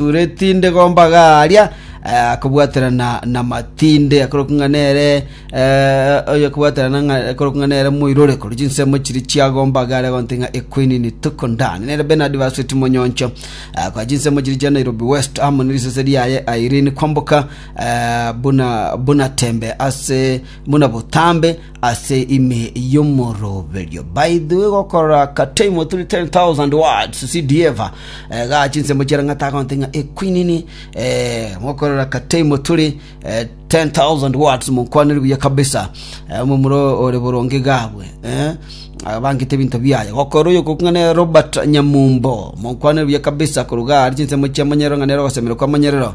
Ore tinde gomba garia eh, akobwaterana na matinde akorokwa ng'a nere eh, oyo akobwaterana ng'a akorokwa ng'a nere moirore korwa chinsemo chiri chiagomba garia gonte ng'a equinini tukundani nere benard basweti monyoncho eh, kwa chinsemo chiri chia nairobi west amo ne risese riaye airini kwamboka eh, buna buna tembe ase buna botambe Ase ime y'omoroberio baidwe gokora ka time of 310,000 words CD ever ga chinsemo chia rang'ata agonte ng'a ekwinini eh, mokorora ka time of 310,000 words monkwanire buya kabisa eh, omomuro ore boronge gabwe eh, abangete ebinto biaye gokora oyo kokung'ane Robert Nyamumbo monkwanire buya kabisa koruga ari chinsemo chia monyerero ng'a nero ogosemerwa kwa monyerero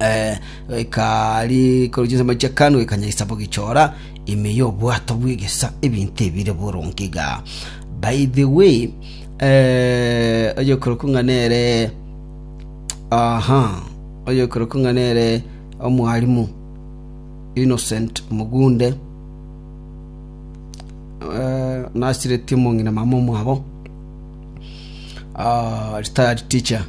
eh, ekari korwa chinsemo chia kanu ekanyaisa bogichora ime y'obwato bw'egesa ebinto ebire boronge iga by the way eh, oyokorokwa ng'a nere aha oyokorokwa ng'a nere omwarimu innocent mugunde eh, nasiretie omong'ina mama omwabo ah, retired teacher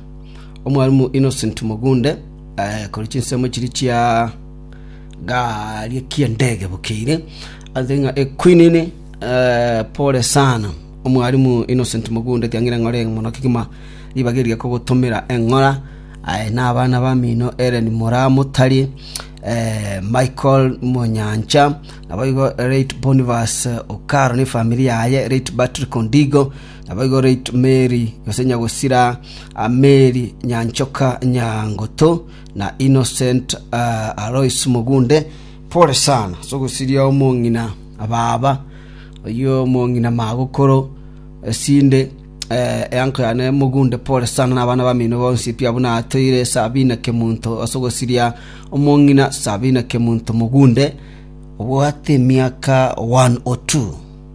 Omwalimu Innocent Mogunde, ekori chinsemo chiria chia gari ekia ndege bokeire, anse ng'a ekwinini eh, pole sana. Omwalimu Innocent Mogunde kiang'ira ng'a ore mono kegima ribaga eria kogotomera eng'ora aye na abana bamino Ellen Moramotari, eh, Michael Monyancha, naboigo late Boniface Okaro ne efamiri yaye, late Patrick Ondigo, Naboigo reit Meri, gose Nyagusira Meri Nyanchoka Nyangutu, na Innocent Alois Mugunde, pore sana ase ogosiria omong'ina baba, oyio omong'ina magokoro, esinde eango yane Mugunde, pore sana na abana bamino bonsi pi abwo natoire Sabina Kemunto ase ogosiria omong'ina Sabina Kemunto Mugunde, obwate emiaka 102.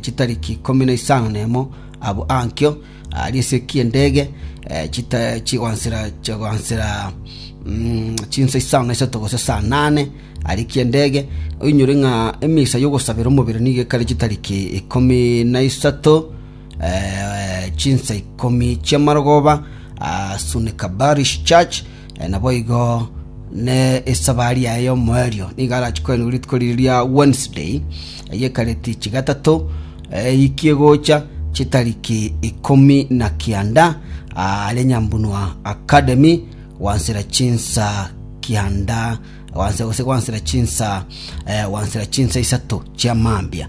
chitariki ikomi na isano nemo abwo ankio, aria esegi y'endege chigoansera chinsa isano na isato gose saa nane aria ekia endege. Oinyore ng'a emisa y'ogosabera omobere nigo ekare chitariki ikomi na isato, chinsa ikomi chi'amarogoba, Sunnah Kabbarish Church. Naboigo nesabari yaye yomoerio nigo arache kwenigwa rituko riria ria Wednesday, eyekareti chigatato eikie gocha chitariki ikomi na kianda are Nyambunua Academy gwansera chinsa kianda gose gwansera chinsa gwansera chinsa isato chia mambia.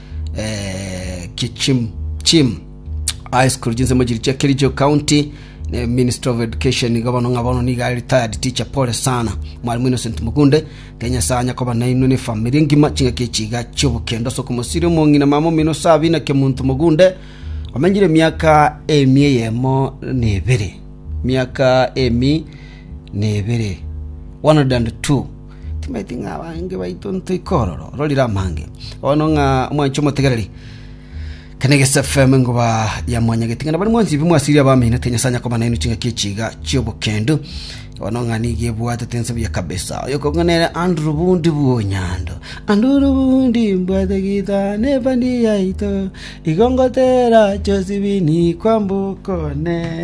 eh, kichim chim high school chinsemo chiri chia kericho county ne minister of education iga bono ng'a bono niga retired teacher pole sana mwalimu innocent mukunde kenya sanya koba nainwe ne family engima ching'aki echiga chiobokendo soko mosiri omong'ina mama omino sabi na kemuntu mugunde omenyire miaka emi eyemo na ebere miaka emi na ebere 102 Timanyeti ng'a abange baito ntoika ororo ororire amange. Bono ng'a omwanchi omotegereri, kane gesefm ngoba ya mwanyageti ng'a nabani mwansibi mwasiria abamenete Nyasae anyakoma nainwe chingaki echiga chiobokendu. Bono ng'a nigo ebwatete ense buya kabisa. Oyo okong'a nere Andrew Bundi Bwonyando. Anduru Bundi mbwate gita nefani yaito. Igo ngotera Josibini kwambuka one.